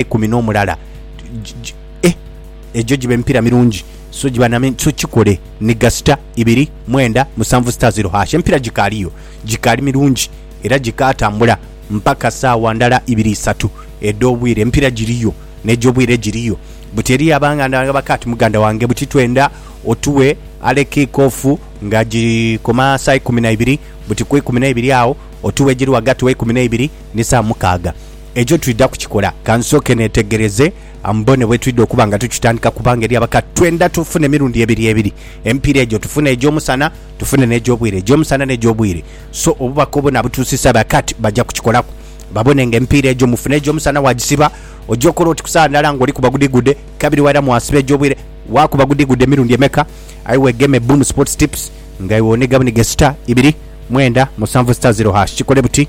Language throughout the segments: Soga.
eikumi n'omulala eh, egyo giba emipiira mirungi so giba name so kikole ni gasita ibiri mwenda musanvu sita zero hash emipiira gikaaliyo gikaali mirungi era gikaatambula mpaka saawa ndala ibiri isatu edh'obwire emipiira giriyo n'egy'obwire giriyo buti eriyo abanganda bange bakaati muganda wange buti twenda otuwe ale kiikofu nga gikoma saa ikumi na ibiri buti ku ikumi na ibiri awo otuwe egiri ghagati wa ikumi na ibiri ni saa mukaaga Ekyo twidha kukikola. Ka nsooke neetegereze mbone bwe twidha okuba nga tukitandika kubanga eri abaka twendha tufune emirundi ebiri ebiri emipiira egyo. Tufune egy'omusana, tufune n'egy'obwire, egy'omusana n'egy'obwire. So obubaka obwo nabutuusisa ba Kat baja kukikolaku babone nga emipiira egyo mufuna egy'omusana waagisiba. Oja okola oti ku saawa ndala ng'olikuba gudigudde kabiri wairamu waasiba egy'obwire. Waakuba gudigudde emirundi emeka aye weegeme Boom Sports Tips nga iwe oniga buniga sita ibiri mwenda musanvu sita ziro hash. Kikole buti.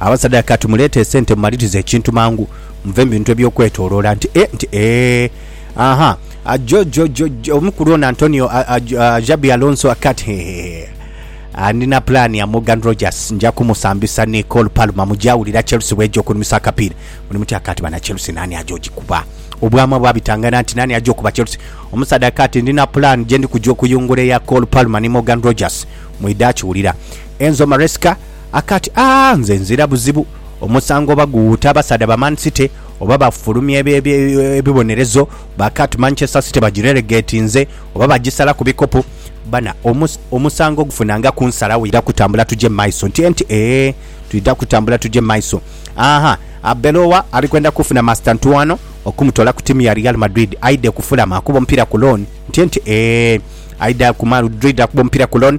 Abasaadha ka tumuleete esente mumalirize ekintu mangu muve mu bintu eby'okwetooloola nti e, nti eeh, aha, ajo, jo, jo, jo, omukulu ono Antonio a, a, a, Xabi Alonso akati hehehe Ah, ndina pulaani ya Morgan Rogers, nja kumusambisa ni Cole Palmer, muja wulira Chelsea bw'eja okunumisa akapiira. Muli mutya? Akati bana Chelsea naani aja ogikuba? Obwama bwabitangana nti naani aja okuba Chelsea. Omusaadha akati ndina pulaani gye ndi kuja okuyungula eya Cole Palmer ni Morgan Rogers. Mwidha kiwulira. Enzo Maresca. akati, Aah nze nzira buzibu omusango oba guwuute abasaadha ba Man City oba bafulumya ebibonerezo bakati Manchester City bagirelegetinze oba bagisalaku bikopo bana omusango gufuna nga kunsalawo twidha kutambula tuje mu maiso nti enti eeh twidha kutambula tuje mu maiso aah Arbeloa ali kwenda kufuna Mastantuano okumutola ku tiimu ya Real Madrid aidhe ku Fulham akuba omupiira ku loan nti enti eeh aidha ku Madrid akuba omupiira ku loan